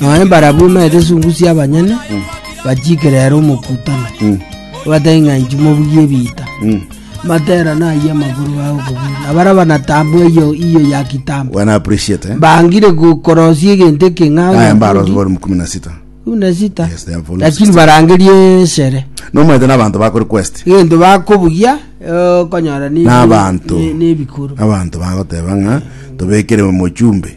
Nonya barabwo baete esungu sia abanyene, bachiikere ere omokutano, obatebie ng'a inche mobugi ebiita. Matera nayie amagoro bao okobugia, na baria banatambo eyo iyo ya kitambo. Wana appreciate eh? Bangire go- korosia egento eke ng'a Aya oyo mbaro akondi- volume kumi na sita. kumi na sita. Yes, they are volume Lakini 16. barangerie esere. Nomaete n'abanto ba request. Egento bakobugia, eh, okonyora ni- N'abanto. ni- ni ebikuru. Abanto bagoteba ng'a tobekere mochumbe.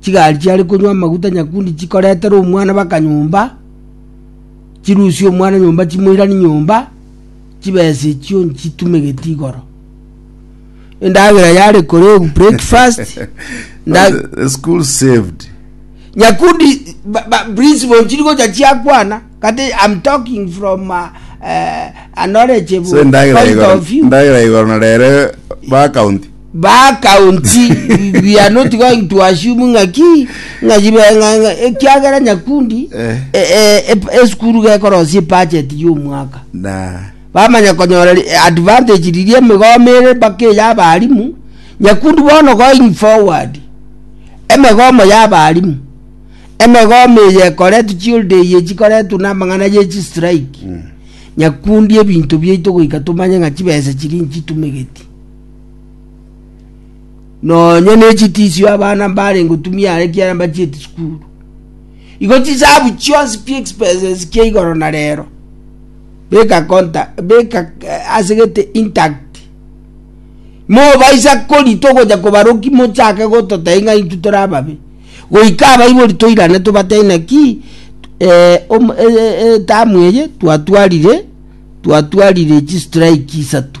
chigari chiare konywa amaguta nyakundi chikoretera omwana baka nyomba chirusie omwana nyomba chimoirani nyomba chibesa echio nchitumegeti igoro endagera yare kore breakfast nda- The school saved. nyakundi ba- ba- principal nchiri gocha chiakwana kati i'm talking from uh, uh, a knowledgeable So endagera point igoro. of view Endagera igoro na rere ba county. Ba county we are not going to assume ng'a ki ng'a jibe ng'a ng'a ekiagera nyakundi Eh. e- e- ep- esukuru gekorosia budget y'omwaka na bamanya konyora ri- advantage riria emegomo ere mpaka eya abarimu nyakundi bono going forward emegomo ya abarimu emegomo eye ekoretwa chiolde eye chikoretwa na amang'ana ye chistrike nyakundi ebinto biaito goika tomanye ng'a chibesa chiri nchi tumegeti nonya n'echitisio abana mbarenge otumia are kiara mbachieti sukuru igo chisabu chionsi pi expenses kia igoro na rero beka konta beka eh, asegete intact mobaisa kori togoja kobaroki mochake gototai ng'a intu tore ababe goika abaibori toirane tobatei naki eh, om- eh, eh, etamu eye twatwarire twatwarire chistrike isato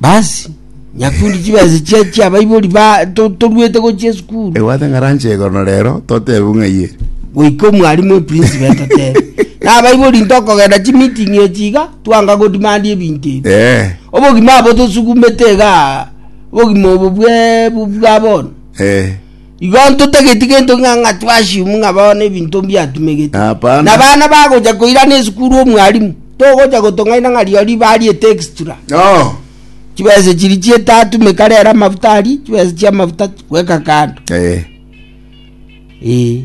Basi, nyakundi chibesa chia chia abaibori ba to- toruete gochia esukuru. Ebwate ng'a ranche igoro na rero totebe buna ng'ai ere. Goika omwarimu eprinsipo etotebe. Na abaibori ntokogenda chimeeting echi iga, twanga godemandia ebinto ebi. Eh. Obogima abo tosukumete iga, obogima obo bwe bu- bwa bono. Eh. Igo ntotageti gento ng'a ng'a twashimu ng'a bono ebinto mbiatumegeti. Hapana. Na bana bagocha koirana esukuru omwalimu togocha gotong'aina ng'a riori riba riete extra. Oh. Chibesa chiri chiete atumeka rero amafuta ari chibesa chia amafuta gweka kando. Eh. Eh.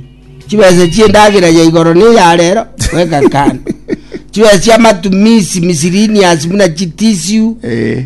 Chibesa chie ndagera ya igoro ne ya rero gweka kando. Chibesa chia matumisi misiriniasi buna chitisiu Eh.